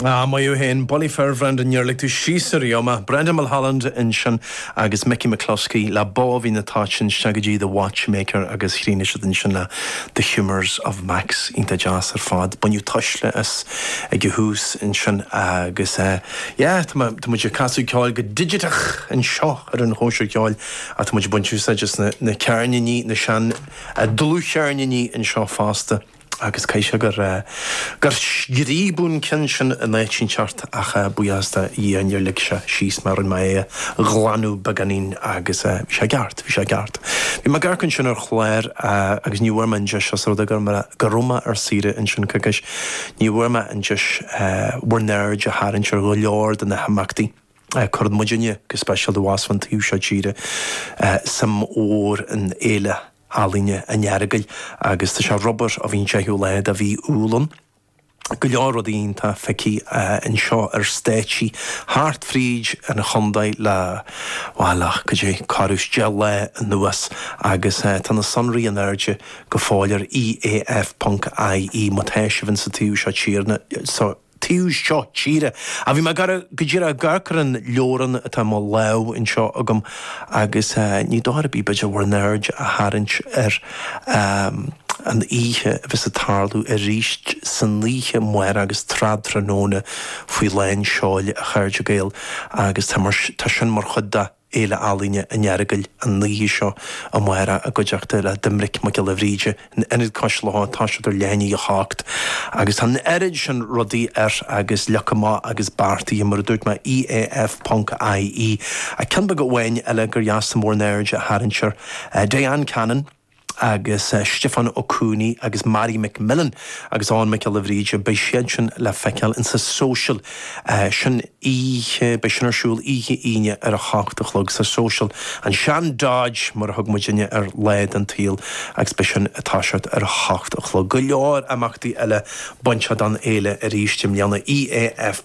Ah, maith thú fhéin. Bulaí fir, Bhrendan, níor lig tú síos ariamh mé. Brendan Mulholland ansin agus Micky McCluskey le Bó Mhín na Toitean isteach go dtí The Watchmaker agus chríochnaigh siad ansin le The Humours of Max. Iontach deas ar fad. Baineadh tuisle as ag an tús ansin agus eh yeah, tá tá muid ag casadh ceoil go digiteach anseo ar an Chóisir Cheoil ach tá muid ag baint úsáid as na na ceirníní, na sean dlúthcheirníní anseo fosta. agus caithfidh sé gur scríobadh an ceann sin in áit inteacht ach buíochas do Dhia níor lig sé síos mé, rinne mé é a ghlanadh beagáinín agus bhí sé i gceart, bhí sé i gceart. Bhí mé ag amharc ansin ar chlár agus ní bhfuair mé an deis, ós rud é go raibh mé ar saoire ansin coicís, ní bhfuair mé an deis bhur n-aird a tharraingt ar go leor de na himeachtaí a cuireann muidinne, go speisialta abhus an taobh seo tíre, suim mhór ann, Féile. ealaíne an Earagail agus tá sé ar obair ó bhí an séú lá de mhí Iúil ann. go leor rudaí iontach feicthe anseo ar stáitsí thart fríd an chontae le, bhuel, ach go dtí corradh is deich lá anuas agus tá na sonraí in airde go fóill ar EAF ponc IE má tá sibh insa taobh seo tíre. taobh seo tíre. Ach bhí mé ag eh go díreach ag amharc ar an leabhrán atá i mo lámh anseo agam agus ní dochar ar bith b'fhéidir bhur n-aird a tharraingt ar an oíche a bheas ag tarlú arís san oíche amárach agus Trad Tráthnóna faoi lán seoil, a chairde Gael, agus tá sin mar chuid de. Fhéile Ealaíne an Earagail an oíche seo amárach i gcuideachta le Doimnic Mac Giolla Bhríde in Ionad Cois Locha. Tá siad ar leath i ndiaidh a hocht agus tá an oiread sin rudaí ar agus leagtha amach agus beartaithe, mar a dúirt mé, EAF ponc IE. Ach ceann beag amháin eile gur dheas domh bhur n-aird a tharraingt air. Diane Cannon. agus Stiofán Ó Cooney agus Mary McMillen agus Eoin Mhic Giolla Bhríde, beidh siad sin le feiceáil insa social san oíche, beidh sin ar siúl oíche Aoine ar a hocht a chlog sa social An Sean Dodge, mar a thug muidinne air lá den tsaol agus beidh sin ag toiseacht ar a hocht a chlog. Go leor imeachtaí eile bainteach don fhéile arís i mbliana. EAF.